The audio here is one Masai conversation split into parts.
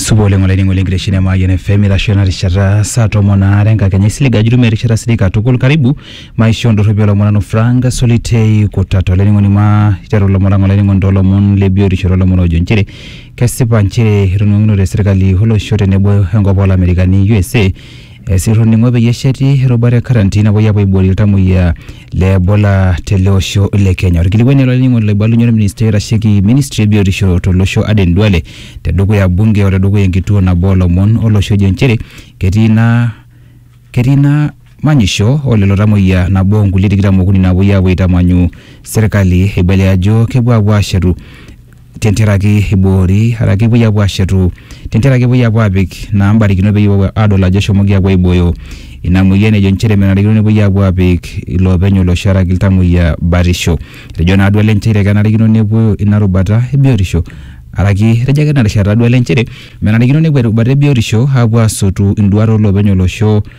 supa oleng olainining'oni lenkitesheni emayian fm itasho ena rishata saa tomon aare enkakenya isilig ajo itumia erishata sidai katukul karibu maisho ndorropi olomon nanu frank solitei kutata olainining'oni ma iteru ilomon lang olainining'oni toolomon le biotisho toolomon oojo nchere kesipa nchere etoning'okinote serkali olosho tenebo enkop olamerikani usa esirr oning'o peyie esheti erubata e quarantine napuoi apuo aiboorie iltamoyia le Ebola tele osho le Kenya. Orkilikuai ele olainining'oni loibalunye orministai oitasheki ministry e biotisho tolosho Aden Duale tedukuya bunge o tedukuya enkituo nabo olomon olosho ejo nchere ketii ina ketii ina manyisho o lelo tamoyia nabo o nkulie tikitam okuni naapuoi aapuo aitamanyu serkali eibalia ajo kepuo aapuo aashetu tentiaraki eiboori araki epuoi apuo aashetu tentiaraki epuoi apuo aapik naa mbarikinot peyie epuo aadol ajo eshomoki apuo aibooyo ina moyian ejo nchere menarikino nepuoi apuo aapik iloopeny olosho araki iltamoyia batisho. Etejo naa duo ele nchere kenarikino nepuo ina rubata e biotisho araki etejo ake tina rishata duo ele nchere menarikino nepuo erubata e biotisho apuo aasotu induat oo loopeny olosho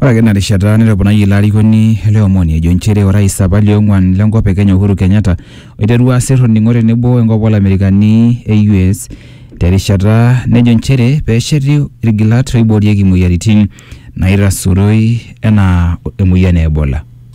Ore ake ina rishata netoponayie ilo arikoni ele omoni ejo nchere orais apa liong'uan lenkop e Kenya Uhuru Kenyatta oiterua asir olning'o tenebo enkop olamerikani e US terishata nejo nchere pesheti ilgilat oiboorieki imoyiaritin naitasuroi enaa emoyian e Ebola.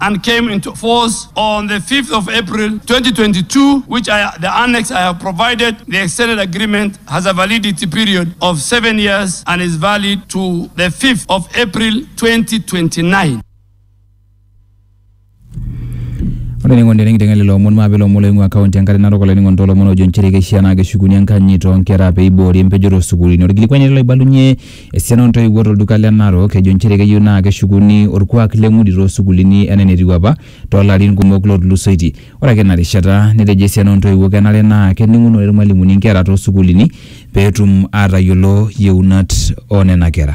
and came into force on the 5th of April 2022, which I, the annex I have provided, the extended agreement has a validity period of seven years and is valid to the 5th of April 2029. ore ningo ndene kitenge lelo omon maa pelo omon loing'ua kaunti enkare narok olainingo ntolomon ojo nchere keishaa naa keshukuni enkanyit toonkera pee eiboori empejoto osukuulini orkilikuai ele loibalunye Esiana ontoiwuo tolduka le Narok ejo nchere keyieu naa keshukuni orkuak le ng'udi too sukuulini enaa enetiu apa too larin kumok lootulusoitie. Ore ake ina rishata netejo esiana oo ntoiwuo kenare naa kening'unore ilmalimuni nkera too sukuulini pee etum aatayiolo yieunat oo nena kera.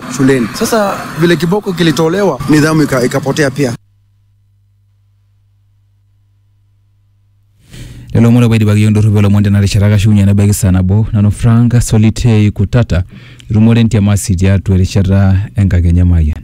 shuleni. Sasa vile kiboko kilitolewa, nidhamu ika- ikapotea pia. lelo omon opo aidipaki yiok ndorropu olomon tena rishata kashukunye nebaiki saa nabo nanu frank solitei kutata itumore entiamasi tiatua erishata enkakenya mayian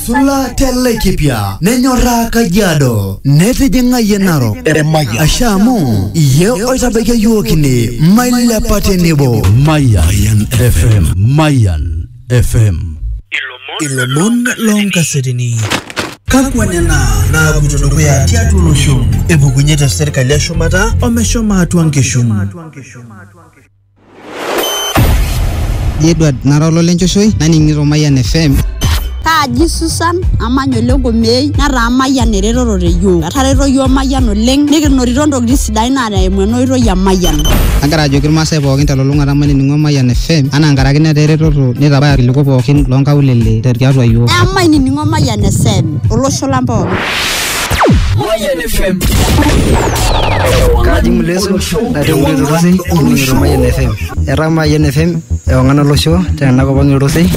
Sula Telekipia nenyorraa Kajiado netijing'ayie Narok Eremaya asha amu iye oitabaiki iyiook ine mailepa tenebo Mayan FM. Mayan FM. Ilomon loonkasetini. Kakwa nena naapuoito dukuya tiatua olosho? Epukunye te serkali eshumata omeshomo atua nkishu. Ji Edward nara olole nchoshoi naning'ito Mayian FM. Kaaji Susan amanya ole Ngomei netaa Mayian eretoto te yiok. Etareto yiok Mayian oleng nikinotito ntokitin sidain naa eimu ena oitoi e Mayian. Agira ajoki irmaasai pookin telulung'ata mainining'o Mayian FM anaa nkaraki netaa eretoto neitabaya irkiliku pookin loonkaulele tiatua yiok. Emainining'o Mayian FM olosho lang pookin. Mayan FM. Kaji Muleso, natii Mbuzi Rosei, ning'ito Mayian FM. Etaa Mayian FM ewang'an olosho tena kop ang' Irosei.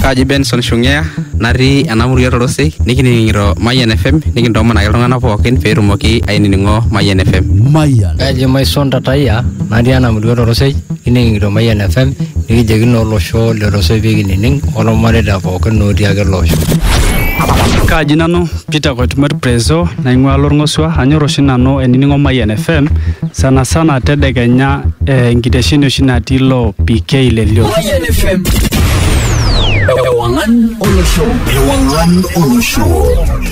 Kaji Benson Shungea, natii ena murua Torosei, nikining'ito Mayian FM, nikintoomonaki iltung'anak pookin pee etumoki ainining'o Mayian FM. Mayan. Kaji Maison Tataya, natii ena murua Torosei. Kining'ito Mayian FM nikijoki naa olosho lorosoi pee kinining olmareita pookin otii ake ele osho. Kaaji nanu Peter Koitumor Prezo naing'ua Lorng'osua anyor oshi nanu ainining'o Mayian FM sana sana tedekenya eh, enkitesheni oshi natii ilo PK le Lio. Mayian FM. Ewang'an olosho. Ewang'an olosho.